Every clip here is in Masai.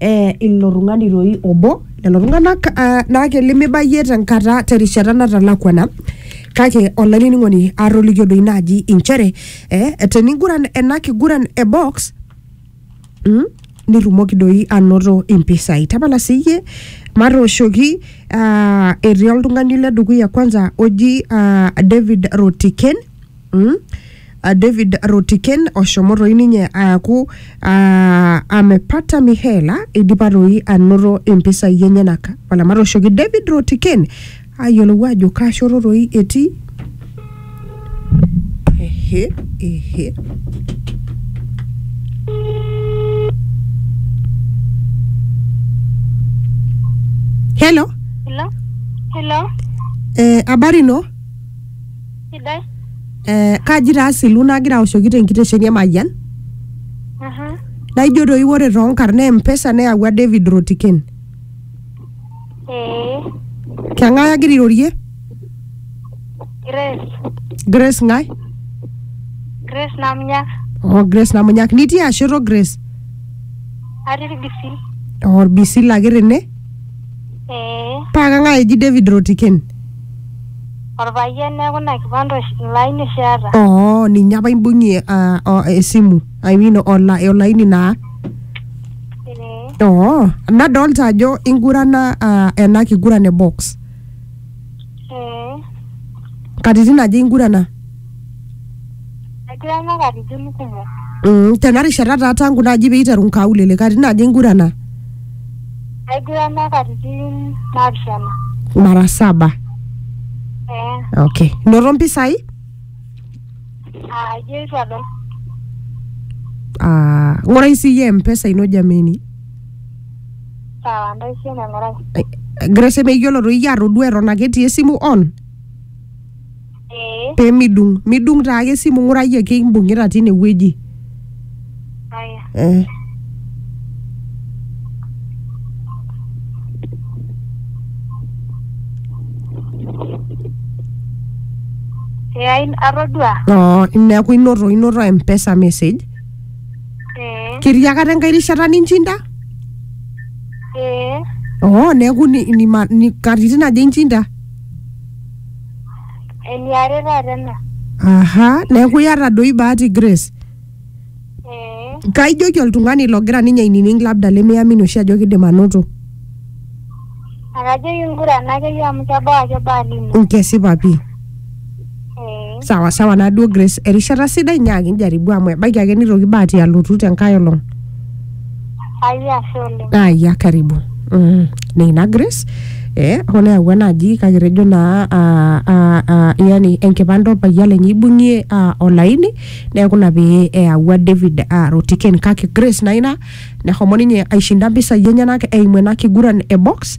eh, ilo tung'ani toi obo lelo tung'anak ah, naake limibayie tenkata terishata natalakuana kake olainining'oni atolikio doi naaji inchere eh, teniguran ena kiguran e box mm, nirrumoki doi anoto impisai tapala siyie matooshoki ah, etii oltung'ani le dukuya kwanza oji ah, david rotiken mm, A David Rotiken oshomo toi ninye aaku aa amepata Mihaela eidipa toi anoto impisai enyenak. Wala matooshoki David Rotiken ayiolou aajo kaa shoto toi etii. Ehe, ehe. Hello, Hello? Hello? eh, habari no? sidai. Eh, kaji taa asilu nagira aoshoki tenkitesheni e Mayian Mhm. naijo doi ore toonkarn naa empesa neyawua David Rotiken. Ee, Keng'ae agira airorie? Grace. Grace ng'ae? Grace Namnyak. Oh, Grace Namunyak. Nitii ashoto Grace? Atii Ilbisil. Oh, Olbisil ake tene? Ee, Paa kang'ae eji David Rotiken? Orpayian neeku ina kipande oshi ilo aini oshi eeta. oo ninye apa imbung'ie ah, o- esimu I mean ola- olaini naa Ee. oo nadolta ajo ingurana ah, ena kiguran e box Ee. katitin aja ingurana Egira ina katitin kumok. Mm, tena rishata taa tangu naaji peiteru nkaulele katitin aja ingurana? Egira ina katitin naapishana. Mara saba. Eh, Okay. Inoto mpisai? ah, ijo eitu adol. Ah, ng'urai siyie mpesa ino jameni. Sawa, ntaishe neng'orai. Eh, Grace meyiolo toi iyie atodua eton ake etii esimu on. ee pee midung midung taa ake esimu ng'urai ake imbung'ita tine wueji aya eh. ee ai- atodua Oh, neeku inoto inoto mpesa message ee ketii akata enkae rishata ninchinda ee oh, neeku ni, ni, ma- ni katitin aja inchinda Eniare taata ena. aha neeku iyata doi bahati grace Eh, kaijoki oltung'ani logira ninye ainining labda lemiamini oshi ajo kidim anoto akajoki ngurana akeyie amu kebau ake baa lino. nkesipa pii Eh, sawa sawa naduo grace erishata sidai nyaaki njaribu amu ebaiki ake nitoki bahati alotu tenkae olong Haya, ashe oleng. aya karibu mm. neina grace eh, hoo neyawua naaji kake etejo naa ah, ah, ah, yani enkipande orpayian lenye ibung'ie ah, olaini neeku ina pee eyawua david ah, rotiken kake grace naa ina nehomo ninye aishinda mpisai enyenak eimu ena kiguran e box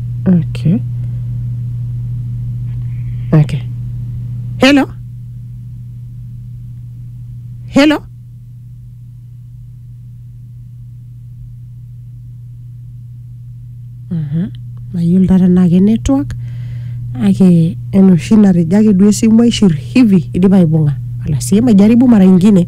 Okay. Okay. Hello. Hello. Mhm. Mayiolo taata naa ke network ake enoshi natejo ake duo esimu aishir hivi idipa aibung'a. Ala sii majaribu mara ingine.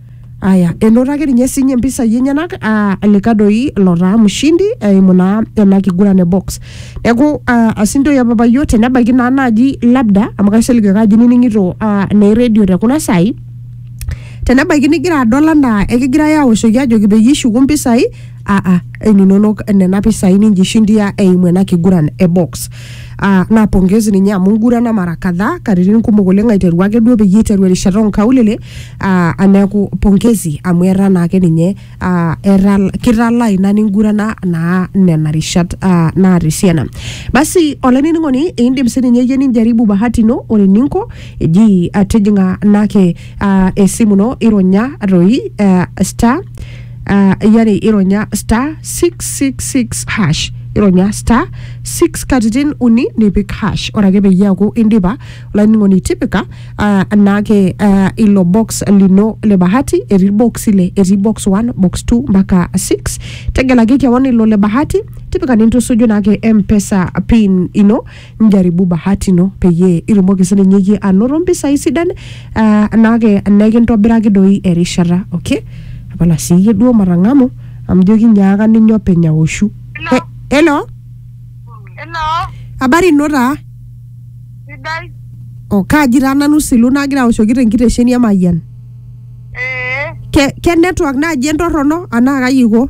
Aya, enoto ake ninye sinye mpisai enyenak aa lika doi lotaa mshindi eimu naa ena kiguran e box. Neeku aa asindoi apa papayo tenebaiki naa naaji labda amu kaisilig ake ajo inining'ito aa naa eredio te kuna saai tenebaiki nigira adol anaa ekigirai aoshoki ajoki peyie ishuku mpisai aa inonok nena pisai ninjishindia eimu ena kiguran e box. Ah, naa pongezi ninye amu ngurana mara kadhaa katitin kumok oleng aiteru ake duo peyie iteru erishata onkaulele ah, aneeku pongezi amu etaa naake ninye ah, etaa kitalaa ina ningurana naa nena rishat ah, naata esiana basi olainining'oni indim sininye iyie ninjaribu bahati ino ore eninko eji ah, tijing'a naake uh, esimu ino ironya toi uh, star uh, yani ironya star 666 hash ironya star 6 katitin uni nipik hash ore ake peyie eaku indipa olainining'oni tipika uh, naake uh, ilo box lino le bahati etii box ile etii box 1 box 2 mpaka 6 tegelaki kewon ilo le bahati tipika nintusuju naake mpesa pin ino Njaribu bahati ino peyie itumoki sininye iyie anoto mpisai sidan ah, naake nekintobiraki doi erishata okay tapala siiyie duo matang'amu amu ijo kinyaaka ninye openy aoshu He- hello Hello, habari ino taa sidai. oh, kaaji taa nanu silu nagira aoshoki tenkitesheni e mayian Ee, ke, ke network naaji entorrono anaa kai iko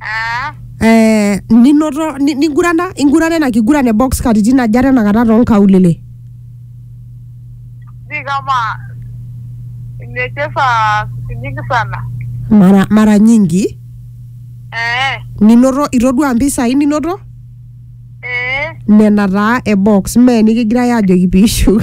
Ah, eh, ninoto ni- nigurana ingurana ina kiguran e box katitin aja tenakata toonkaulele si kama nimecheza siku nyingi sana. mara, mara nyingi Eh, ninoto itodua mpisai ninoto eh, nena taa e box mee nikigirae aajoki piishuk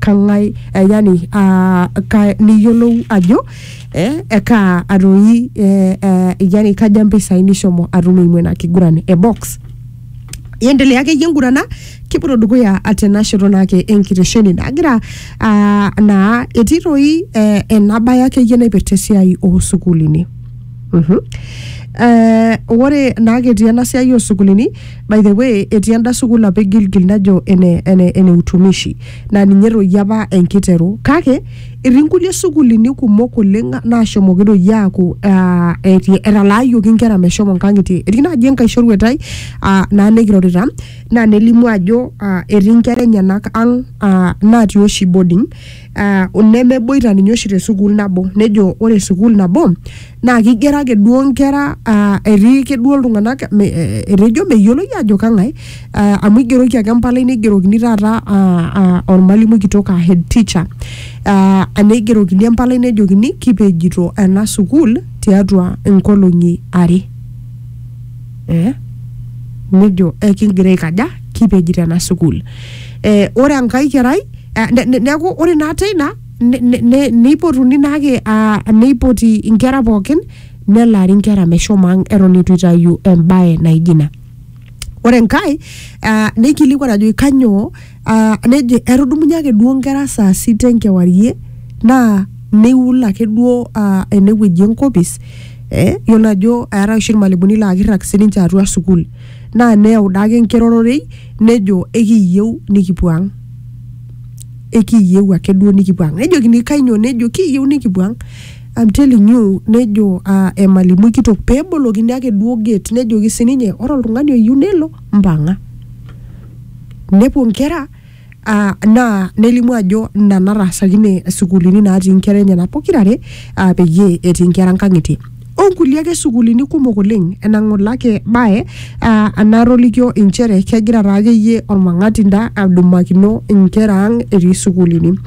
kang'ae eh, yani ah, ka, niyiolou ajo eh, ekaa atoi eh, eh, yani kaja mpisai nishomo atum eimu ina kiguran e box iendelea akeyie engurana kipuoto dukuya tena shoto naake enkitesheni nagira ah, naa etii toi eh, ena baye akeyie naipirta esiai oosukuulini Mhm. Eh, ore naake etii ena siai oosukuulini By the way, etii enda sukuul apa e Gilgil najo ene, ene, ene utumishi naa ninye toi apa enkiteru kake etii nkulie sukuulini kumok oleng naashomoki toi aaku ah, eti- etalaayioki nkera meshomo nkang'itie etii naaji enkae shoruetai ah, naa nikirorita naa nelimu ajo ah, etii nkera enyenak ang ah, natii oshi boarding ah, nemeboita ninye oshi te sukuul nabo nejo ore sukuul nabo Naa keigero ake duo nkera aa etii ake duo iltung'anak me- eh, etejo meyioloi ajo kang'ae aa, amu eigeroki ake empalai neigerokini taata aa, aa, ormalimui kitok aa head teacher aa, neigerokini empalai nejokini kipejito ena sukuul tiatua inkolong'i are eh? nejo ekigira aikaja kipejito ena sukuul eh, ore enkae kerai eh, ne- ne- neeku ore naa teina ne- ne- ne- neipotuni naake ah, neipoti inkera pookin nelaari inkera meshomo ang eton eitu itayu embae naijo ina ore enkae ah, neikilikuan ajoki kanyoo ah, nejo etudumunye ake duo nkera saa sita enkewarie naa neiul ake duo ah, enewueji enkopis eh, yiolo ajo eetae oshi irmalimuni laa kirrag sininche atua sukuul naa neyau daake enkirororei nejo ekiyieu nikipuo ang ekiyieu ake duo nikipuo ang nejokini kainyoo nejo kiyieu nikipuo ang I'm telling you nejo uh, emalimui kitok pebolokini ake duo gate nejoki sininye ore oltung'ani oyieu nelo mpang'a nepuo nkera uh, naa nelimu ajo ina nataasakine sukuulini natii nkera enyenak pokirare uh, peyie etii nkera nkang'itie onkulie ake sukuulini kumok oleng enang'olake bae ah, anatolikio inchere kegira taa akeyie ormang'atinda adumakino inkera ang etii sukuulini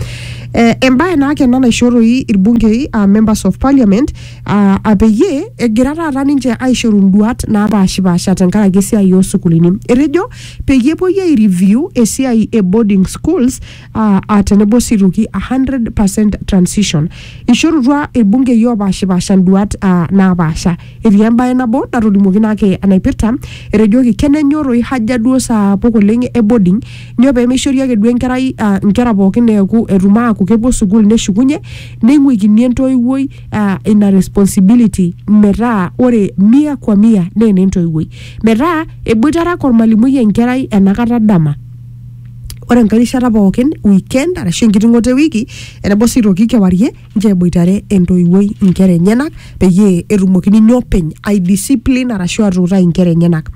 eh, embae naake ena naishoo toi irbungei ah, members of parliament ah, ah, peyie egira taata ninche aishoru induat naapashipasha tenkaraki esiai oosukuulini etejo peyie epuoi ai review esiai e boarding schools aa aa tenebo sii aitoki a 100% transition. Eishorutua ilbungei oopaashipaasha nduaat aa naapaasha. Etii embae nabo natolimuoki naa ake enaipirta, etejoki kenenyoroi haja duo saapuk oleng e boarding, nyoo pee meishori ake duo enkerai aa nkera pookin eeku etum aaku kepuo sukuul neshukunye neing'uikini entoiwuoi aa ina responsibility metaa ore mia kwa mia naa enentoiwuoi. Metaa eboitare ake olmalimui enkerai enakata dama. ore enkae rishata pookin weekend arashu enkiting'oto ewiki enebo sii aitoki kewarie nchoo eboitare entoiwuoi inkera enyenak peyie etumoki ninye openy ai discipline arashu atuutai inkera enyenak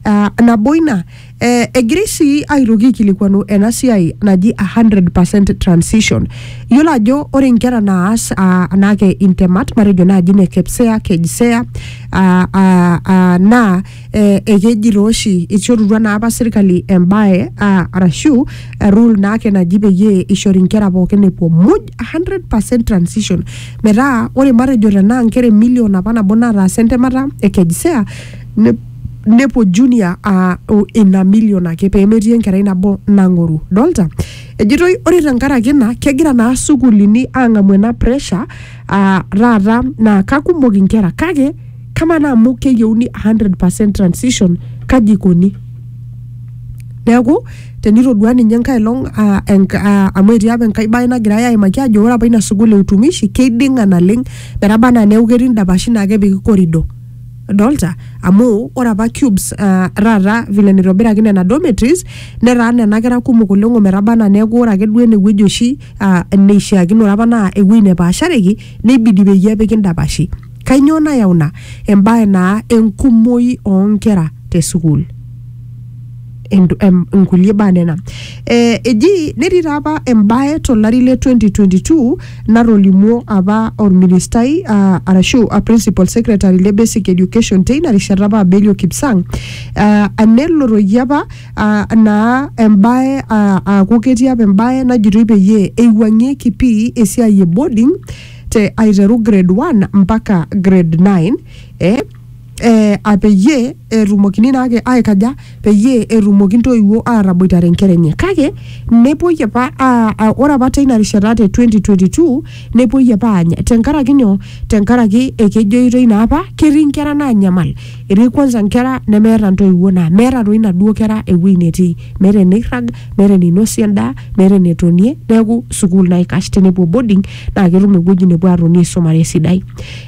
Ah, nabo ina eh, egirai sii aitoki aikilikuanu ena siai naji a 100 transition iyiolo ajo ore inkera naas ah, anaake intemat matejo naaji ine KPSEA, KJSEA ah, ah, ah, naa eh, ekeji taa oshi ishorutua naa apa sirkali embae ah, arashu eh, rule naake naji peyie ishori inkera pookin epuo muj 100% transition metaa ore matejo tenaa inkera emilion apa nabo nataasa entemata e kejisea ne- nepuo junior ah, o- ina milion ake pemetii enkerai nabo nang'oru dolta ejitoi ore tenkaraki ina kegira naa sukuulini ang'amu ena pressure ah, taata naa kakumok inkera kake kamaa naa amu keyieuni 100% transition kaji ikoni neeku tenitodua ninye enkae long ah, enk- ah, amu etii apa enkae bae nagirai aimaki ajo ore apa ina sukuul e utumishi keiding'a naleng metaba anaa neeku ketii indapashi naa kepiki korido dolta amu ore apa cubes uh, taata vile nitobiraki nena dormitories netaa nena kera kumok oleng ometaba anaa neeku ore ake duo enewueji oshi ah, neishiakinore apa naa ewueji nepaashareki neibidi peyie epiki ndapashi kainyoo nayau ina embae naa enkumoi oonkera te sukuul Endu- em- inkulie baa nena eh, eji netii taa apa embae tolari le 2022 natolimuo apa orministai ah, arashu a principal secretary le basic education teina rishata apa Abelio Kipsang ah, anelotoki apa ah, naa embae ah, aaku ketii apa embae najitoi peyie eiwuang'ieki pii esiai e boarding te aiteru grade 1 mpaka grade 9 eh, eh, ah, peyie etumokini naake aikaja peyie etumoki ntoiwuo aataboitare nkera enye kake nepuoi apa ah, ah, ore apa teina rishata te 2022 nepuoi apa aanya tenkaraki nyoo tenkaraki ekejoitoi naa apa ketii nkera naanyamal etii kwanza nkera nemeeta ntoiwuo naa meeta toi inaduo kera ewuei netii meeta eneirrag meeta eneinosie endaa meeta enetonie neeku sukuul naikash tenepuo boarding naa ketum ewueji nepuo atoni aisumare esidai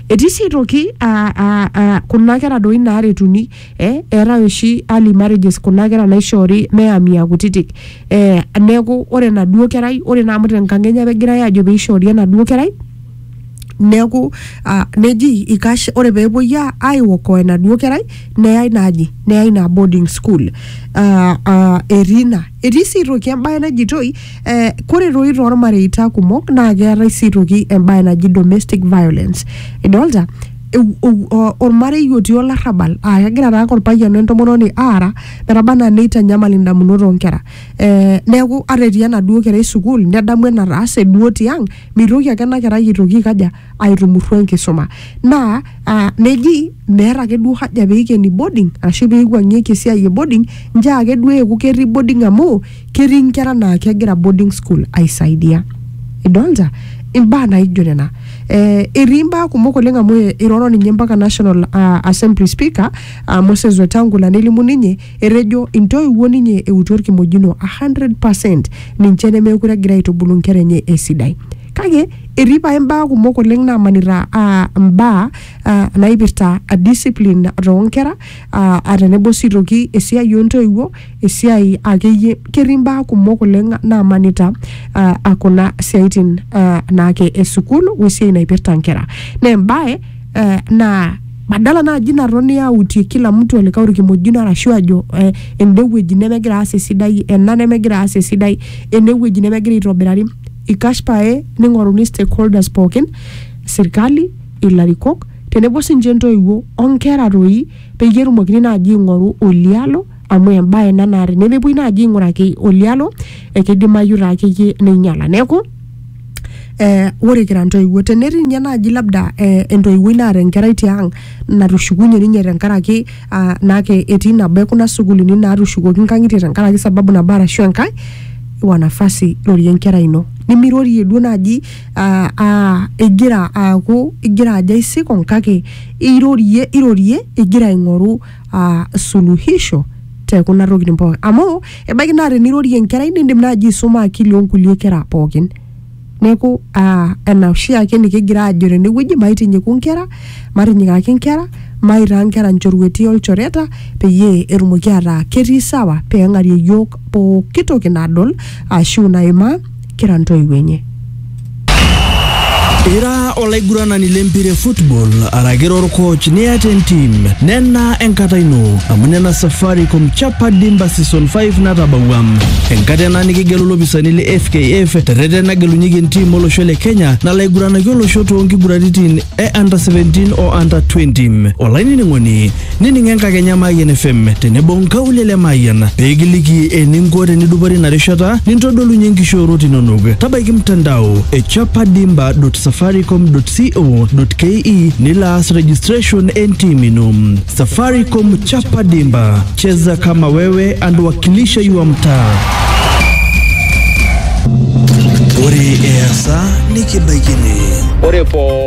etii sii aitoki aa, aa, aa, kuna kera doi naaretuni eh, eetae oshi early marriages kuna kera naishoori meyami akutitik eh, neeku ore enaduo kerai ore naa amu tenkang enye apa egirae aajo peishoori enaduo kerai neeku ah, neji ikash ore peepuoi a- aiokoa enaduo kerai neyai naaji neyai ina boarding school ah, ah, etii ina etii sii aitoki embae najitoi eh, kore toi tormareita kumok naa keetae sii aitoki embae naji domestic violence idolta Eu- eu- o- ormarei otii olarrabal aa kegira taa ake orpayian wentomononi aara metaba anaa neitanyamal indamunot oonkera eh, neeku ata etii enaduo kerai sukuul nedamu enataase duo tiang Meitoki ake ena kerai aitoki aikaja aitumurru enkisuma naa uh, neji meeta ake duo haja peikeni boarding arashu peiwuang'ieki esiai e boarding njaa ake duo eeku ketii boarding amu ketii inkera naa kegira boarding school aisaidia idolta imbaa naijo nena eh, etii imbaa kumok oleng amu iroro ninye mpaka national uh, assembly speaker uh, Moses Wetangula nelimu ninye Etejo intoiwuo ninye eutu olkimojino a 100 percent ninche nemeekure egira aitubulu nkera enye esidai. Kake etii pae mbaa kumok oleng naamanita aa mbaa aa naipirta discipline too nkera aa tenebo sii aitoki esiai oo ntoiwuo, esiai akeyie ketii mbaa kumok oleng naamanita aa kuna siaitin aa naake e sukuul we siai naipirta nkera. Naa embae aa naa badala naaji natoni autie kila mtu olikae orkimojino arashu ajo eh, ende wueji nemegira aas esidai ena nemegira aas esidai ene wueji nemegira aitobirari ikash pae ning'oruni stakeholders pookin sirkali ilarikok tenebo sinche ntoiwuo onkera toi peyie etumokini naaji aing'oru olialo amu embaye ena naa tenemepuoi naaji aing'uraki olialo ekeidimayu taa akeyie neinyiala neeku eh, ore kira ntoiwuo tenetii ninye naaji labda eh, entoiwuoi naata enkerai tiang natushukunye ninye tenkaraki ah, naake etii nabo ekuna sukuulini naatushukoki nkang'itie tenkaraki sababu nabo arashu enkae iwa nafasi rorie enkerai ino nimirorie duo naaji ah, ah, igira aaku igira ajo aisikong kake irorie irorie igira aing'oru uh, suluhisho te kuna tokitin pookin amu ebaiki naa tenirorie enkerai nindim naaji aisuma akili onkulie kera pookin neeku uh, ena oshiake nikigira aajo tenewueji maitinyiku nkera matinyikaki nkera maitaa nkera nchorueti olchoreta peyie etumoki ataa ketii sawa peng'arie yiok pooki toki nadol ashu naimaa kira ntoiwuo enye. Ira olaiguranani lempira e football araki orkoch niata entim nena enkata ino amu nena Safaricom Chapa Dimba Season 5 natabawua. Enkata ena nikigelu ilopisani le FKF terreten nagelunyeki entim olosho le Kenya nalo aiguranaki olosho too nkiguraritin e under 17 o under 20. Olainining'oni Nining enkakenya Mayian FM tenebo nkaulele Mayian pee kiliki eninko tenidupore ina rishata nintodolunye nkishoorot inonok. Tabaiki mtandao e chapadimba.safaricom.co.ke nilo aas registration entim ino. Safaricom Chapa Dimba, cheza kama wewe and wakilisha your mtaa. Ore easa nikibaikini. Ore poo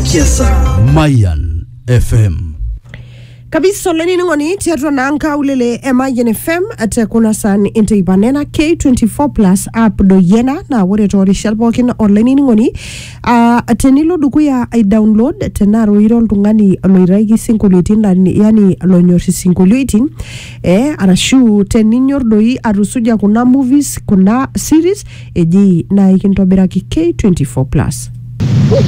Kiesa. Mayan FM. kabisa olainining'oni tiatua naa nkaulele e Mayian FM te kuna san inteipa nena K24 plus app doyiena naa ore toorishat pookin olainining'oni ah, tenilo dukuya ai download tenaa roiro oltung'ani loitaki sinkolioitin lani- yani lonyor isinkolioitin eh, arashu teninyor doi atusuja kuna movies kuna series eji naa ikintobiraki K24 plus